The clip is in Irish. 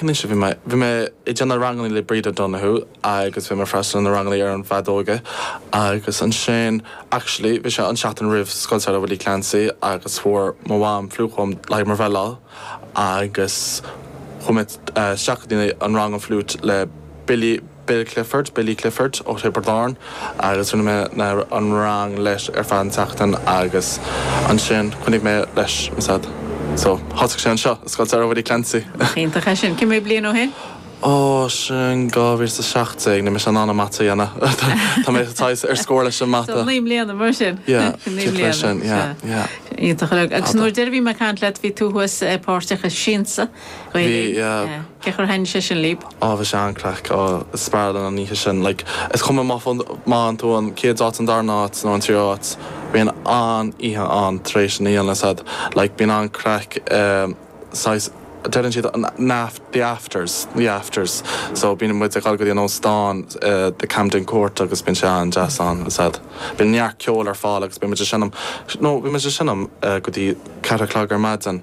Anois, bhí mé, bhí mé ag déanamh ranganna le Bríd O'Donoghue agus bhí mé ag freastal ar na ranganna ar an bhfeadóg agus ansin, actually, bhí sé an tseachtain roimh Scoil Samhraidh Willie Clancy agus fuair mo mham fliú dom le haghaidh mo bhreithlá agus chuaigh mé isteach go dtí an rang fliúit le Billie Bill Clifford, Billy Clifford, ó Thiobraid Árann agus rinne mé na, an rang leis ar feadh an tseachtain agus ansin choinnigh mé leis ansin so thosaigh sé anseo i Scoil Samhraidh Willie Clancy. Nach iontach é sin? Cé mhéad bliain ó shin? Ó, sin dhá mhíle is a seacht déag, níl mise in ann an mata a dhéanamh, tá mé saghas ar scoil leis an mata. So naoi mbliana, mar sin. Yeah, cúpla é sin, yeah. Naoi mbliana, sea, yeah. Iontach. Agus nuair a deir, bhí mé ag caint leat, bhí tú thuas eh, páirteach i Siansa. Gael Linn? Cén chaoi ar thaitin sé sin leat? Á bhí sé an-craic speisialta an oíche sin. Like, is cuma má fhaigheann tú an chéad áit, an darna áit nó an tríú áit, bíonn an-oíche ann tar éis an oíche sin. Like, bíonn an-craic saghas, deireann siad an aft, the afters, the afters. So bíonn muid ag dul go dtí an óstán, the Camden Court, agus bíonn sé an-deas ansin. Bíonn neart ceoil ar fáil agus bíonn muid ag seinm, no, bíonn muid ag seinm go dtí ceathair a chlog ar maidin.